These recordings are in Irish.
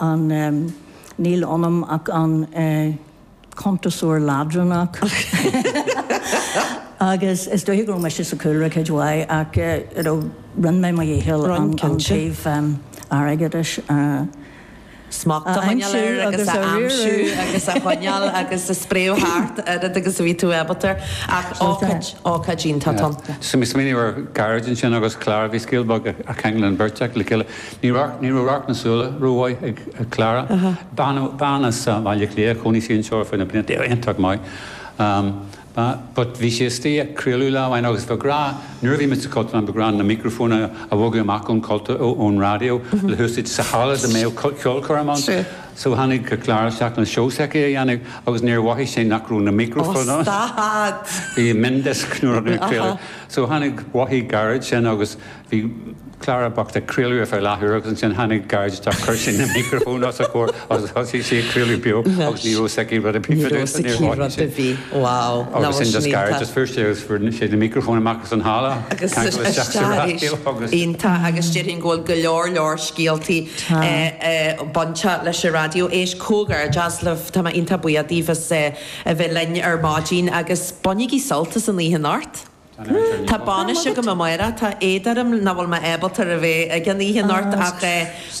ah níl ionam ach an cuntasóir leadránach agus is dóiche go raibh mise sa chúlra cuid mhaith ach you know rinn mé mo dhícheall an taobh airgeadais a smacht a choinneáil air agus a aimsiú agus a choinneáil agus a spréadh thart oiread agus a bhí tú ábalta air ach ócáid, ócáid iontach. Tá. Smaoiním ar Ghearóid ansin agus Clara bhí scéal beag a cheangal an bheirt acu le chéile. Ní raibh radharc na súile rómhaith ag Clara, bean as Baile Átha Cliath a chónaigh sí anseo ar feadh na bliana, bhí iontach maith but bhí sí istigh ag craoladh lá amháin agus ba ghnách, nuair a bhí muid sa Chultúrlann, ba ghnách na mícreafónna a bhogadh amach ón cultúr, ón raidió le húsaid sa halla dá mbeadh ceolchoirm ann so tháinig Clara isteach le seó s'aici a dhéanamh agus níor mhothaigh sí nach raibh na mícreafónna ann. Ó stad! Bhí miondisc nuair a rinneadh craoladh so tháinig, mhothaigh Gearóid sin agus Bhí Clara bocht ag craoladh ar feadh leathuair agus ansin tháinig Gearóid isteach, chuir sé na micreafóin os a comhair agus thosaigh sí ag craoladh beo agus ní raibh a fhios aici rud ar bith faoi dtaobh de agus níor tháinig sí. Agus sin just Gearóid, just fuair sí agus fuair sé na micreafóin amach as an halla ceangail isteach sa raidió agus. Iontach agus déarfainn go bhfuil go leor leor scéaltaí bainte leis an raidió. Éist comhghairdeas libh, tá mé iontach buíoch díbh as a bheith linn ar maidin agus bainigí sult as an oíche anocht. Tá bainis agam amárach. Tá éad orm nach bhfuil mé ábalta a bheith ag an oíche anocht ach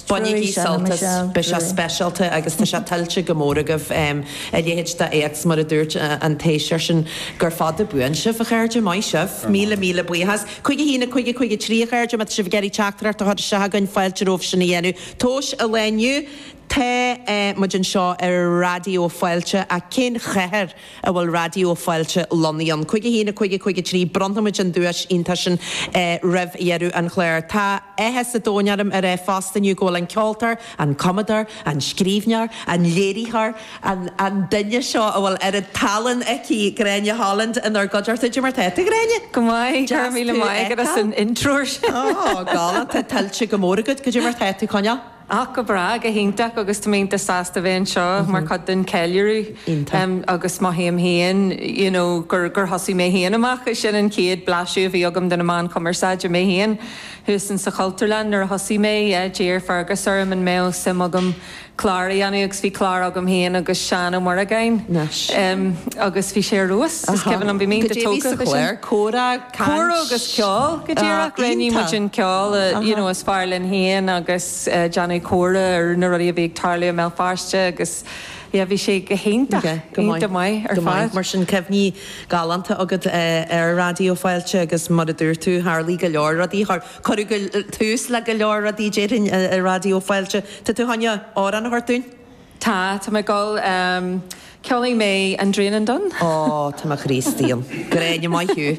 bainigí sult as. Beidh sé speisialta agus tá sé tuillte go mór agaibh a leithéid de éacht. Mar a dúirt an tUasal sin, gura fada buan sibh, a chairde. Maith sibh. Míle míle buíochas. Cúig a haon, a cúig, a cúig a trí, a chairde. Má tá sibh ag iarraidh teachtaireacht a chur isteach againn, fáilte romhaibh sin a dhéanamh. Tomhas an lae inniu Tá muid anseo ar Raidió Fáilte ach cén chathair? a bhfuil Raidió Fáilte lonnaithe ann. Cúig a haon, a cúig, a cúig a trí, bronnfaimid an duais iontach sin roimh dheireadh an chláir. Tá áthas an domhain orm a rá fosta inniu go bhfuil an ceoltóir, an cumadóir, an scríbhneoir, an léiritheoir, an an duine seo a bhfuil oiread tallann aici, Gráinne Holland, inár gcuideachta. Cad é mar tá tú, Gráinne! Go maith, go raibh míle maith agat as an intro sin! Galánta, tuillte go mór agat. Cad é mar tá tú ag coinneáil! Ach go breá, go hiontach agus tá mé iontach sásta bheith anseo mar chuid den cheiliúradh agus mothaím féin you know gur gur thosaigh mé féin amach sin an chéad blaiseadh a bhí agam de na meáin chumarsáide mé féin thuas in sa Chultúrlann nuair a thosaigh mé yeah d'iarr Fergus orm an mbeadh suim agam clár a dhéanamh agus bhí clár agam féin agus Seán Ó Muireagáin, em, agus bhí sé ar fheabhas, is cuimhin liom bhí mé iontach tógtha leis sin. Go deimhin sa chlár comhrá. Cóiriú caint. agus ceol, go díreach. Roghnaigh muid Iontach. an ceol a you know is fearr linn féin agus déanamh comhrá ar na rudaí a bhí ag tarlú i mBéal Feirste agus yeah bhí sé go hiontach, iontach maith ar fad. Mar sin, cuimhní galánta agat ar Raidió Fáilte agus mar a dúirt tú, tharlaigh go leor rudaí, cuireadh tús le go leor rudaí déarfainn i Raidió Fáilte. Tá tú chun amhrán a thabhairt dúinn? Tá, tá mé ag gabháil. Ceolfaidh mé An Draighneán Donn. Ó, tá mo chroí istigh ann. Gráinne, maith thú.